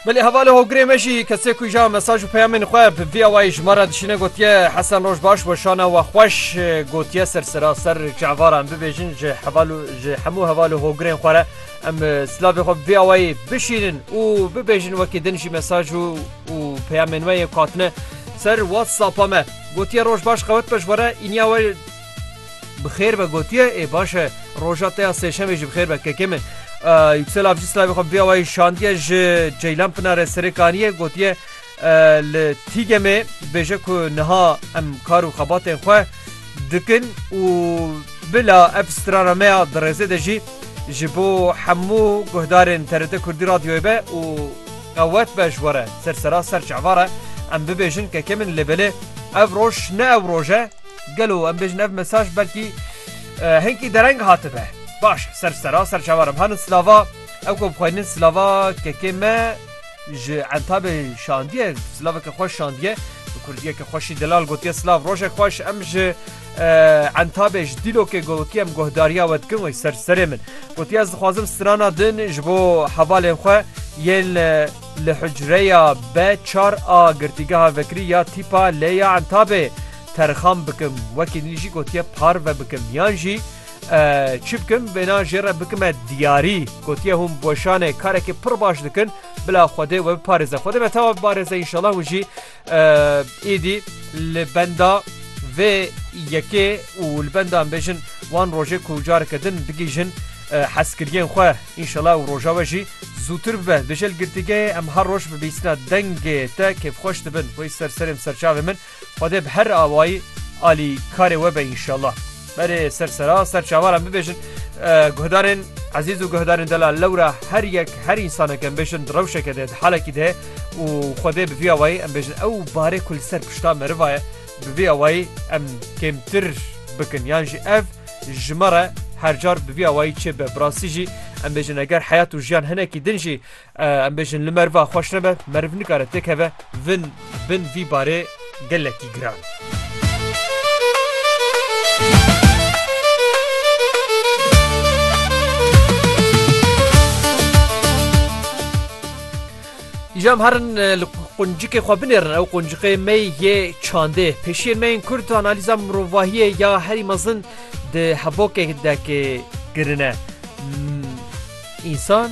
Belê hevalê hogirê me jî kesê ku ja mesaj û peyamên xwe bi vî awayî ji me re dişîne gotiye Hesen roj baş weşana we xweş gotiye ser seraser çavara em bibêjin ji heval ji hemû hevalê hogirên xwe re em silavê xwe vî awayî bişînin û bibêjin wekî din jî mesaj û û peyamên we yê katine ser WhatsAppa me gotiye roj baş qewet be ji we re îniya we Bi xêr be gotiye ê baş e roja te ya sêşemê jî bi xêr be kekê min. Yüksel avcı slavê xwe vê awayî şandiye ji Ceylan Pinare serê kaniyê gotiye li Tîgemê bêje ku niha em kar û xebatên xwe dikin û bila ev strana me ya di rêzê de jî ji bo hemû guhdarên TRT Kurdî Radyoyê be û qewet be ji we re ser sera ser çavare em bibêjin kekê min lê belê ev roj ne ew roj e Gelo em bêjin ev mesaj belkî hinkî dereng hatibe. Baş ser sera ser çavan em hanin silava ew ku bixweynin silava kekê me ji entabê şandiye silaveke xweş şandiye bi kurdiyeke xweşî delal gotiye silav rojek xweş em ji entabê ji dîlokê gotiye em guhdariya we dikin wê ser serê min gotiye ez dixwazim strana din ji bo hevalên xwe yên li hucreya B4 a girtîgeha vekirî ya tîpa lê ya entabê terxan bikim wekî nî jî gotiye parve bikim yan jî çi bikim vêna jê re bikime diyarî gotiye hûn weşanê karekî pir baş dikin bila xwedê we biparêze xwedê me tawa biparêze înşallah hûn jî êdî li benda vê yekê û li benda em bêjin wan rojê ku careke din bigîjin heskiriyên xwe înşallah û roja we jî zûtir bibe dijel girtîgeyê em her roj bibîsina dengê te kêfxweş dibin wê ser serêm serçavê min Xwedê bi her awayî alî karê we be înşallah. Berê ser sera ser çawaran bibêjin guhdarên ezîz û guhdarên delal lewra her yek her însaneke em bêjin di rewşeke de di halekî de û Xwedê bi vî awayî em bêjin ew barê ku li ser pişta meriva ye bi vî awayî em kêmtir bikin yan jî ev ji me re her car bi vî awayî çêbibe. Bi rastî jî em bêjin eger heyat û jiyan hinekî din jî Em bêjin li meriva xweş nebe, meriv nikare têkeve vin bin vî barê gelekî giran. Îcam herin li quncikê xwe binêrin ew quncikê me yê çandê. Pêşiyên me yên Kurd analîza mirovahiyê ya herî mezin di hebokê de ke kirine. Însan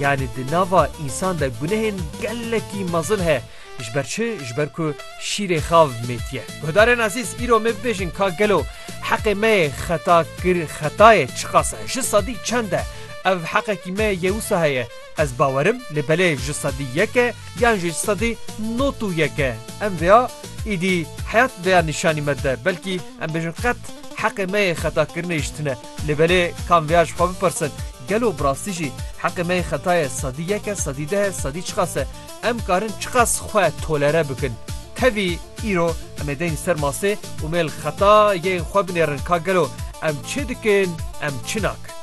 Yanî di nava însan de gunehên gelekî mezin he. Ji ber çi? Ji ber ku şîrê xav mêtiye. Guhdarên ezîz, îro me bibêjin ka gelo heqê me yê xeta kir xeta ye çiqas e? Ji sedî çend e? Ev heqekî me yê wisa heye? Ez bawer im lê belê ji sedî yek e yan jî ji sedî not û yek e? Em vêya îdî heyat vêya nîşanî me dide. Belkî em bêjin qet heqê me yê xeta kirinê ji tune. Lê belê kam vêya ji xwe bipirsin, gelo bi rastî jî heqê me yê xeta ye sedî yek e, sedî deh e, sedî çiqas e? Em karin çiqas xwe tolere bikin? Tevî îro em ê deyn ser masê û mêl xeta yêyn xwe binêrin ka gelo em çi dikin, em çi nakin?